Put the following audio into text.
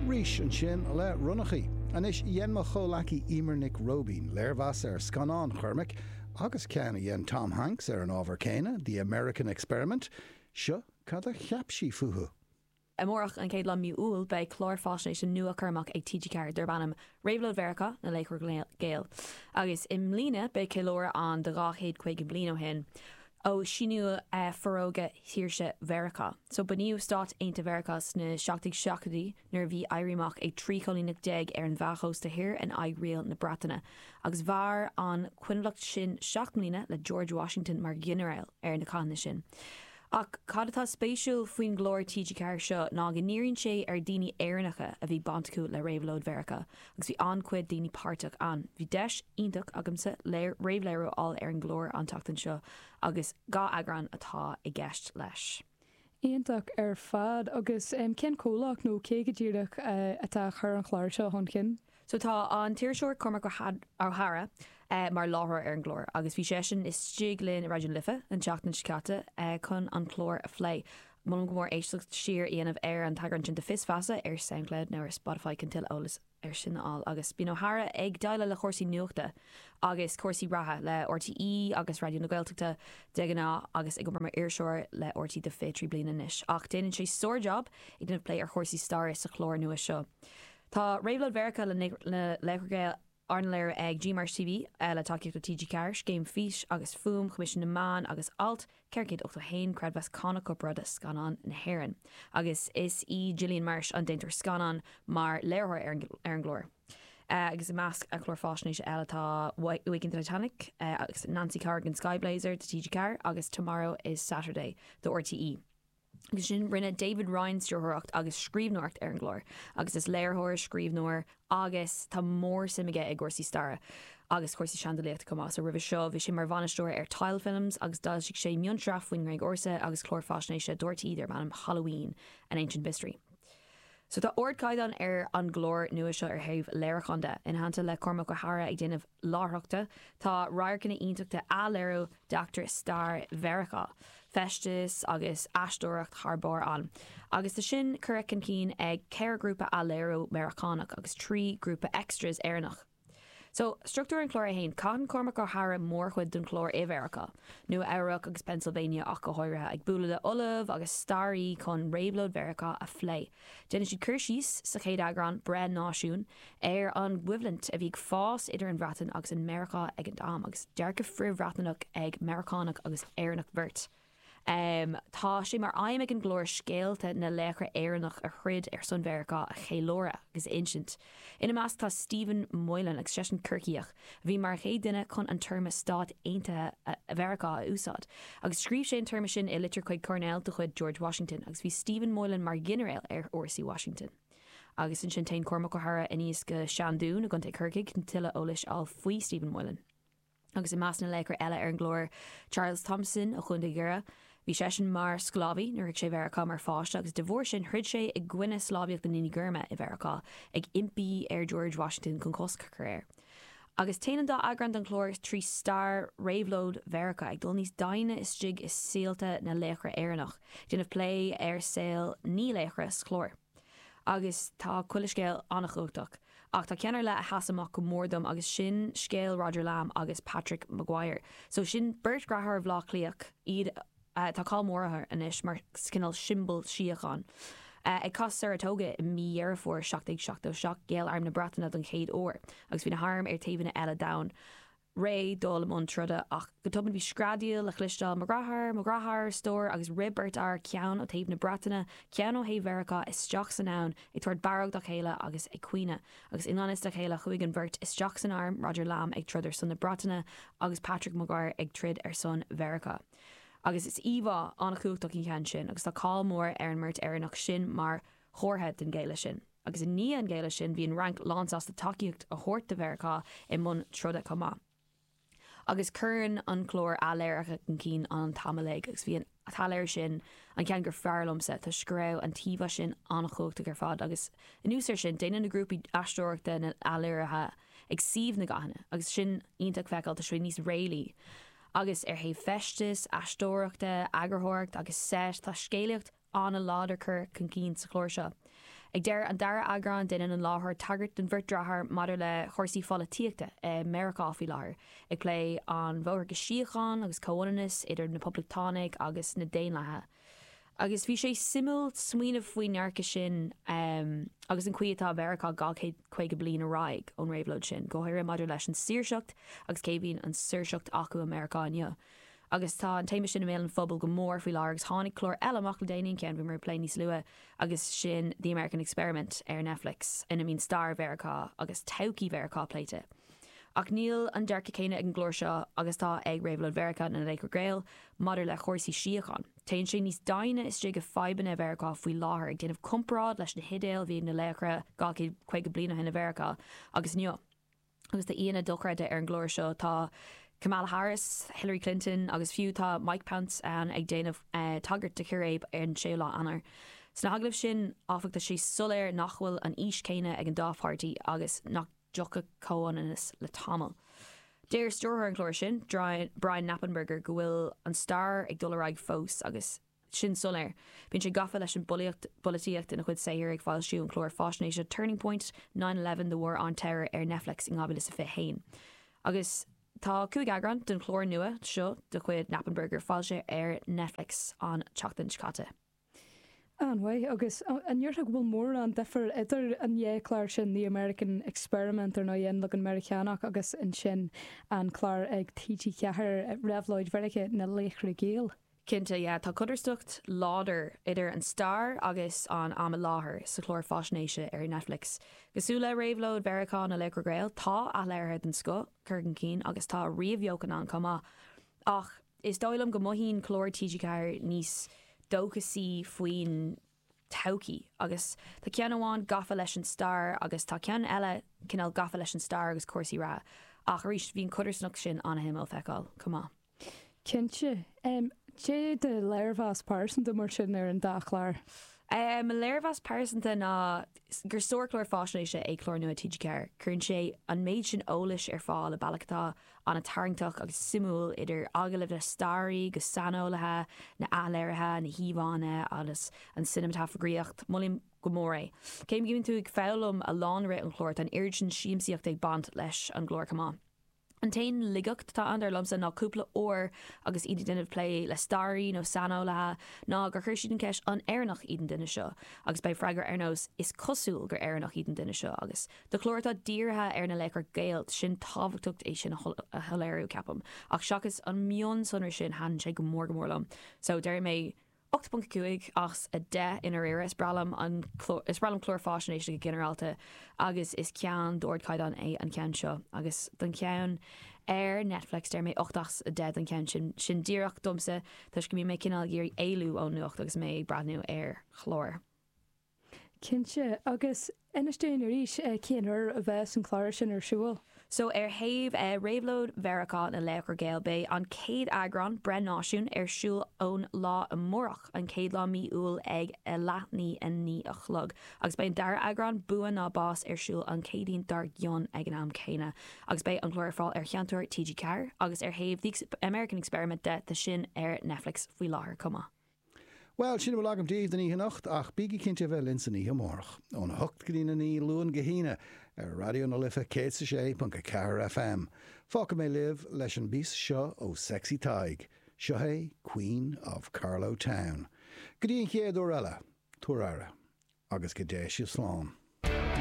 Rís ansin le ronnachaí. Anois, dhein mo chomhleacaí Emer Nic Roibín léirmheas ar scannán Chormaic, agus ceann a dhein Tom Hanks ar an ábhar céanna, The American Experiment. Seo cad a cheap sí fúthu. Amárach, an chéad lá de mhí Iúil, beidh clár fáisnéise nua Chormaic ag TG4 darb ainm Réabhlóid Mheiriceá, Na Laochra Gaeil. Agus i mbliana beidh ceiliúradh ann de dhá chéad caoga bliain ó shin. ó síníodh Forógra Saoirse Mheiriceá. So, bunaíodh Stáit Aontaithe Mheiriceá sna seacht déag seachtóidí nuair a bhí Éirí Amach ag trí choilíneacht déag ar an gcósta thoir in aghaidh riail na Breataine agus mhair an choinbhleacht sin seacht mbliana le George Washington mar ghinearál ar na cathanna sin. Ach cad atá spéisiúil faoin gclár TG4 seo ná go ndíríonn sé ar dhaoine Éireannacha a bhí bainteach le Réabhlóid Mheiriceá Agus bhí an-chuid daoine páirteach ann. Bhí deis iontach agamsa léir, réamhléiriú a fháil ar an gclár an tseachtain seo agus dhá eagrán atá i gceist leis. Iontach ar fad. Agus cén comhlacht nó cé go díreach atá a chur an chláir seo chun cinn? So tá an t-iriseoir Cormac Ó hEadhra mar láithreoir ar an gclár agus bhí seisean istigh linn i Raidió na Life an tseachtain seo caite chun an clár a phlé. Molaim go mór éisteacht siar a dhéanamh ar an eagrán sin de Fios Feasa ar Soundcloud nó ar Spotify chun tuilleadh eolas ar sin a fháil agus bíonn Ó hEadhra ag déileáil le chúrsaí nuachta agus cúrsaí reatha le RTÉ agus Raidió na Gaeltachta de ghnáth agus ag obair mar iriseoir le rte le 23 bliana anois ach déanann sé sár-jab ag déanamh plé ar chúrsaí staire sa chlár nua seo Tá Réabhlóid Mheiriceá Na Laochra Gaeil Arna léiriú ag GMarsh TV, le tacaíocht ó TG Ceathair, Scéim Fís agus Fuaim, Choimisiún na Meán agus Alt 481, Creidmheas Cánach Corparáide Scannán na hÉireann, agus is í Gillian Marsh an déantóir scannáin, mar léiritheoir ar an gclár. Agus i measc a cláir faisnéise eile tá Waking an Titanic, agus Nancy Corrigan, Sky Blazer do TG4, agus Tomorrow is Saturday do rte. Agus ansin rinne David Ryan stiúrthóireacht agus scríbhneoireacht ar an gclár agus is léiritheoir, scríbhneoir agus tá mór-suim aige i gcúrsaí staire agus cúrsaí seandálaíochta chomh maith. So roimhe seo bhí sé mar bhainisteoir ar Tile Films agus d'fhoilsigh sé mionsraith faoin nGréig Ársa agus clár faisnéise do rte darb ainm Halloween, An Ancient Mystery. So tá ardchaighdeán ar an gclár nua seo ar thaobh léiriúcháin de. Ina theannta le Cormac Ó hEadhra ag déanamh láithreachta, tá radharcanna iontacha de athléiriú d'eachtraí stair Mheiriceá, feisteas agus aisteoireacht thar barr ann. Agus tá sin curtha chun cinn ag ceithre ghrúpa athléiriú Meiriceánach agus trí ghrúpa extras Éireannach. So, struchtúr an chláir é fhéin. Caitheann Cormac Ó hEadhra mórchuid den chlár i Mheiriceá, Nua Eabhrac agus Pennsylvania ach go háirithe, ag bualadh le ollaimh agus staraithe chun réabhlóid Mheiriceá a phlé. Déanann siad cur síos, sa chéad eagrán, Breith Náisiún, ar an gcoimhlint a bhí ag fás idir an Bhreatain agus Meiriceá ag an am, agus dearcadh frith-Bhriotanach ag Meiriceánach agus Éireannach beirt. Tá sé mar aidhm ag an gclár scéalta na laochra Éireannach a throid ar son Mheiriceá a cheiliúradh agus a insint. Ina measc tá Stephen Moylan agus seisean Corcaíoch a bhí mar an chéad duine chun an téarma Stáit Aontaithe Mheiriceá a úsáid agus scríobh sé an téarma sin i litir chuig Coirnéal de chuid George Washington agus bhí Stephen Moylan mar ghinearéal ar fhórsaí Washington. Agus ansin téann Cormac Ó hEadhra aníos go Seandún i gContae Chorcaigh chun tuilleadh eolais a fháil faoi Stephen Moylan. Agus i measc na laochra eile ar an gclár, Charles Thomson ó Chontae Dhoire. Bhí seisean mar sclábhaí nuair a shroich sé Mheiriceá mar pháiste agus de bharr sin throid sé i gcoinne sclábhaíocht na ndaoine gorma i Mheiriceá, ag impí ar George Washington chun cosc a chur air. Agus téann an dá eagrán den chlár trí stair réabhlóid Mheiriceá, ag dul níos doimhne istigh i saolta na laochra Éireannach, ag déanamh plé ar saol naoi laochra sa chlár. Agus tá chuile scéal an-chumhachtach, ach tá ceann ar leith a sheas amach go mór dom agus sin scéal Roger Lamb agus Patrick Maguire. So sin beirt dhreatháir ó Bhleá Cliath, iad, tá cáil mór ortha anois mar chineál siombal síocháin. Ag Cath Saratoga i mí Dheireadh Fómhair 1777, ghéill arm na Breataine don chéad uair agus bhí na hairm ar taobhanna eile d'abhainn. réidh dul i mbun troda, ach go tobann bhí screadaíl le chloisteáil, Mo dhreatháir! Mo dhreatháir! a stór, agus rith beirt fhear, ceann ó thaobh na Breataine, ceann ó thaobh Mheiriceá, isteach san abhainn, ag tabhairt barróg dá chéile agus ag caoineadh. Agus i ngan fhios dá chéile chuaigh an bheirt isteach san arm, Roger Lamb ag troid ar son na Breataine agus Patrick Maguire ag troid ar son Mheiriceá. Agus is íomhá an-chumhachtach an ceann sin, agus tá cáil mór ar an mbeirt Éireannach sin mar chomhartha den ghéilleadh sin. Agus i ndiaidh an ghéilleadh sin, bhí an Fhrainc lánsásta tacaíocht a thabhairt do Mheiriceá i mbun troda chomh maith. Agus cuireann an clár athléirithe chun cinn an t-am uilig, agus bhí an t-athléiriú sin an cheann gur fearr liomsa, toisc go raibh an t-íomhá sin an-chumhachtach ar fad, agus anuas air sin, déanann na grúpaí aisteoireachta na n-athléirithe ag suíomh na gcathanna, agus sin iontach feiceáil, tá sé níos réalaí. Agus ar thaobh feisteas, aisteoireachta, eagarthóireacht agus seit, tá scéalaíocht ana láidir curtha chun cinn sa chlár seo. Ag deireadh an dara eagrán déanann an láithreoir tagairt don bheirt dreatháir maidir le chúrsaí pholaitíochta i Meiriceá faoi láthair, ag plé an bhóthar go síocháin agus comhlíontas idir na Poblachtánaigh agus na Daonlathaigh. Agus bhí sé suimiúil smaoineamh faoin ndearcadh sin agus an chaoi atá Mheiriceá dhá chéad caoga bliain ar aghaidh ón réabhlóid sin, go háirithe maidir leis an saoirseacht agus cé a bhíonn an saoirseacht acu i Meiriceá inniu. Agus tá an téama sin i mbéal an phobail go mór faoi láthair agus tháinig clár eile amach le déanaí, an ceann a bhí mé ag plé níos luaithe, agus sin The American Experiment ar Netflix ina mbíonn stair Mheiriceá agus todhchaí Mheiriceá pléite. Ach níl an dearcadh céanna ag an gclár seo agus atá ag Réabhlóid Mheiriceá na Laochra Gael maidir le cúrsaí síocháin. Téann sé níos doimhne istigh i fadhbanna Mheiriceá faoi láthair, ag déanamh comparáid leis na hidéil a bhí ag na laochra 250 bliain ó shin i Mheiriceá agus inniu. Agus tá aíonna dochreidte ar an gclár seo, tá Kamala Harris, Hillary Clinton agus fiú tá Mike Pence ann ag déanamh tagairt do chiréib ar an 6ú lá Eanáir. Sna hagallaimh sin áfach tá sé soiléir nach bhfuil an fhís chéanna ag an dá pháirtí agus nach dtiocfaidh comhionannas le tamall. Deir stiúrthóir an chláir sin, Brian Knappenberger go bhfuil an stair ag dul ar aghaidh fós agus, sin soiléir. Bíonn sé gafa leis an bpolaitíocht ina chuid saothair, ag foilsiú an chláir faisnéise Turning Point, Nine Eleven, The War on Terror ar Netflix in 2021. Agus tá cúig eagrán den chlár nua seo de chuid Knappenberger foilsithe ar Netflix an tseachtain seo caite. An-mhaith. Agus an ndéarfá go bhfuil mórán difir idir an dá chlár sin, The American Experiment, ar ndóigh, An Leagan Meiriceánach, agus ansin an clár ag TG4, Réabhlóid Mheiriceá, Na Laochra Gael? Cinnte, yeah, tá codarsnacht láidir idir an stair agus an am i láthair sa chlár faisnéise ar Netflix. Cosúil le réabhlóid Mheiriceá na Laochra Gael, tá athléirithe den scoth curtha chun cinn agus tá ríomhbheochan ann chomh maith. Ach is dóigh liom go mothaíonn clár TG4 níos dóchasaí faoin. todhchaí agus tá ceann amháin gafa leis an stair agus tá ceann eile cineál gafa leis an stair agus cúrsaí reatha ach arís bhí an codarsnacht sin an-shuimiúil a fheiceáil chomh maith. Cinnte. Cad é do léirmheas pearsanta mar sin ar an dá chlár? Mo léirmheas pearsanta ná gur sárchlár faisnéise é clár nua TG4. Cuireann sé an méid sin eolais ar fáil i bealach atá an-tarraingteach agus suimiúil, idir agallaimh le staraithe agus saineolaithe, na athléirithe, na híomhánna agus an cineamatagrafaíocht. Molaim go mór é. Cé go mbíonn tú ag foghlaim a lán i rith an chláir, tá an oiread sin siamsaíocht ag baint leis an gclár chomh maith. An t-aon laigeacht atá ann, dar liomsa, ná cúpla uair agus iad ag déanamh plé le staraithe nó saineolaithe, ná gur chuir siad an cheist 'An Éireannach iad an duine seo? agus beidh freagra ar nós 'Is cosúil gur Éireannach iad an duine seo' agus. Do chlár atá dírithe ar na laochra Gael, 's an-tábhachtach é sin a shoiléiriú, ceapaim, ach seachas an mionsonra sin thaitin sé go mór go mór liom. So, déarfaidh mé 8.5 as 10 i ndáiríre. Is breá liom an, is breá liom cláir faisnéise go ginearálta agus is ceann d'ardchaighdeán é an ceann seo. Agus don cheann ar Netflix, déarfaidh mé 8 as 10 don cheann sin. Sin díreach domsa toisc go mbíonn mé cineál ag iarraidh éalú ón nuacht agus mé ag breathnú ar chláir. Cinnte. Agus inis dúinn arís cén uair a bheas an clár sin ar siúl? So, ar thaobh Réabhlóid Mheiriceá na Laochra Gael, beidh an chéad eagrán, Breith Náisiún, ar siúl ón lá amárach, an chéad lá mí Iúil ag a leath i ndiaidh a naoi a chlog. Agus beidh an dara eagrán, Bua nó Bás, ar siúl an Chéadaoin dár gcionn ag an am céanna. Agus beidh an clár ar fáil ar Sheinnteoir TG4. Agus ar thaobh The American Experiment de, tá sin ar Netflix faoi láthair chomh maith. Bhuel, sin uile agam daoibh don oíche anocht, ach bígí cinnte a bheith linn san oíche amárach, óna hocht go dtína naoi, Luan go hAoine, ar Raidió na Life 106.4 FM. Fágfaidh mé sibh leis an bpíosa seo ó Sexy Tadhg. Seo é Queen of Carlow Town. Go dtí an chéad uair eile, tabhair aire, agus go dté sibh slán.